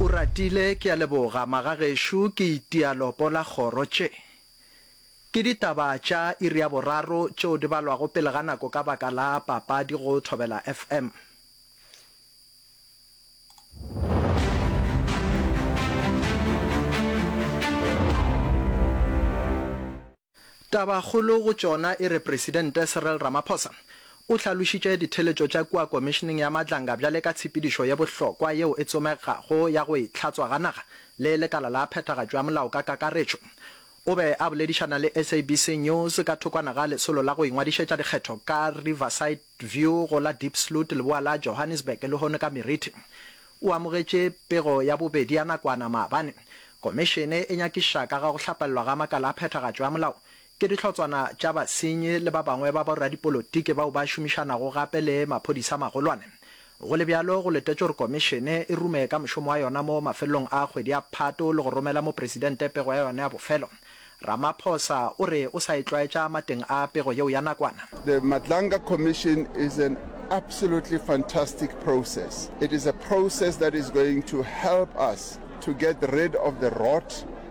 Oratile, Ke a leboga magagešo, ke itia lopo la kgoro. Tše ke ditaba tša iri ya boraro tšeo di balwago pele ga nako ka baka la papadi go Thobela FM. Tabakgolo go tšona e re Presidente Cyril Ramaphosa o hlalošitše ditheeletšo tša kua Komišeneng ya Matlanga bjale ka tshepedišo ye bohlokwa yeo e tsomegago ya go e hlatswa ga naga le lekala la phethagatšo ya molao ka kakaretšo. O be a boledišana le SABC News ka thokwana ga lesolo la go ingwadišetša dikgetho ka Riverside, View go la Diepsloot leboa la Johannesburg lehono ka meriti o amogetše pego ya bobedi ya nakwana maabane. Komišene e nyakiša ka ga go hlapelelwa ga makala a phethagatšo ya molao ke dihlotswana tša basenyi le ba bangwe ba boradipolotiki bao ba šomišanago gape le maphodisa a magolwane Go le bjalo, go letetšwe gore Komišene e rume ka mošomo wa yona mo mafelelong a kgwedi ya Phato le go romela Mopresidente pego ya yona ya bofelo. Ramaphosa o re o sa e tlwaetša mateng a pego yeo ya nakwana. The Madlanga Commission is an absolutely fantastic process. It is a process that is going to help us to get rid of the rot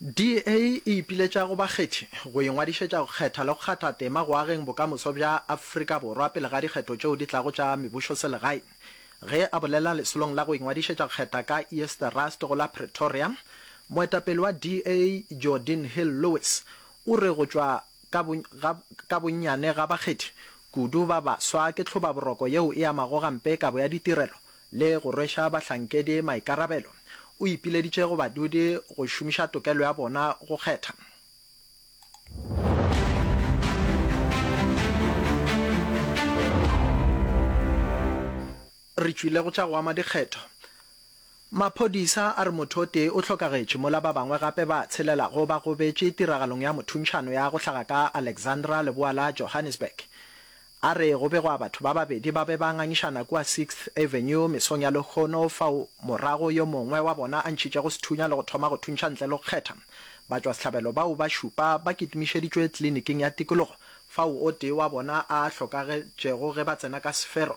DA e ipiletša go bakgethi go ingwadišetša go kgetha le go kgatha tema go ageng bokamoso bja Afrika Borwa pele ga dikgetho tšeo di tlago tša mebusoselegae. Ge a bolela lesolong la go ingwadišetša go kgetha ka Eerste Rust go la Pretoria, moetapele wa DA Geordin Hill-Lewis o re go tšwa Ka, ga, ka bonnyane ga bakgethi kudu ba baswa ke tlhobaboroko yeo e amago gampe kabo ya ditirelo le go rweša bahlankedi maikarabelo. O ipileditše go badudi go šomiša tokelo ya bona go kgetha. Re tšwile go tša go ama dikgetho. Maphodisa a re motho o tee o hlokagetše mola ba bangwe gape ba tshelelago ba gobetše tiragalong ya mothuntšhano ya go hlaga ka Alexandra leboa la Johannesburg. A re go begwa batho ba babedi ba be ba ngangišana kua Sixth Avenue mesong ya Lekgono fao morago yo mongwe wa bona a ntšhitšego sethunya le go thoma go thuntšha ntle le go kgetha. Batšwasehlabelo bao ba šupa ba kitimišeditšwe tliliniking ya tikologo fao o tee wa bona a hlokagetšego ge ba tsena ka sefero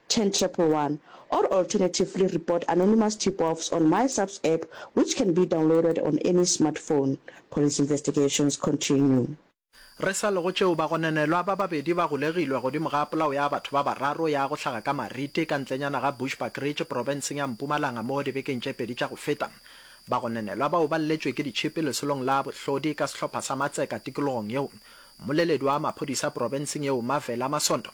Ten Triple One, or alternatively report anonymous tip-offs on MySAPS app which can be downloaded on any smartphone, police investigations continue. Re sa le go tšeo, bagononelwa ba babedi ba golegilwe godimo ga polao ya batho ba bararo ya go hlaga ka Marite ka ntlenyana ga Bushbuckridge profenseng ya Mpumalanga mo dibekeng tše pedi tša go feta. Bagononelwa bao ba lletšwe ke ditšhipi lesolong la bohlodi ka sehlopha sa matseka tikologong yeo. Mmoleledi wa maphodisa profenseng yeo Mavela Masondo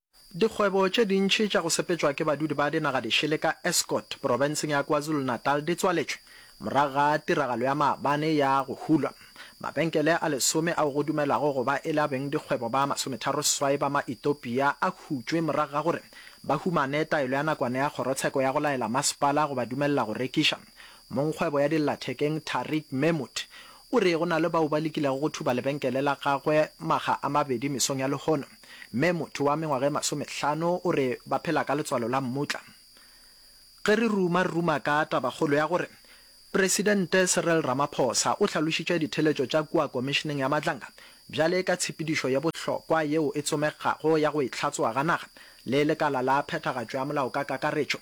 Dikgwebo tše dintši tša go sepetšwa ke badudi ba dinagadišele ka Estcourt, porofenseng ya KwaZulu-Natal di tswaletšwe morago ga tiragalo ya maabane ya go hulwa. Mabenkele a lesome ao go dumelwago go ba e le a beng dikgwebo ba masometharo seswai ba Maetopia a hutšwe morago ga gore ba humane taelo ya nakwana ya kgorotsheko ya go laela masepala go ba dumelela go rekiša. Mongkgwebo ya dillathekeng Tariq Mehmood o re go na le bao ba lekilego go thuba lebenkele la gagwe makga a mabedi mesong ya lehono. Mme motho wa mengwaga e masomehlano o re ba phela ka letswalo la mmutla. Ge re ruma, re ruma ka tabakgolo ya gore Presidente Cyril Ramaphosa o hlalošitše ditheletšo tša kua Komišeneng ya Matlanga bjale ka tshepedišo ye bohlokwa yeo e tsomegago ya go itlhatsoa ga naga le lekala la phethagatšo ya molao ka kakaretšo.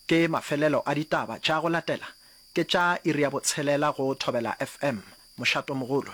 Ke mafelelo a ditaba tša go latela, ke tša iri ya botshelela go Thobela FM. Mošatomogolo.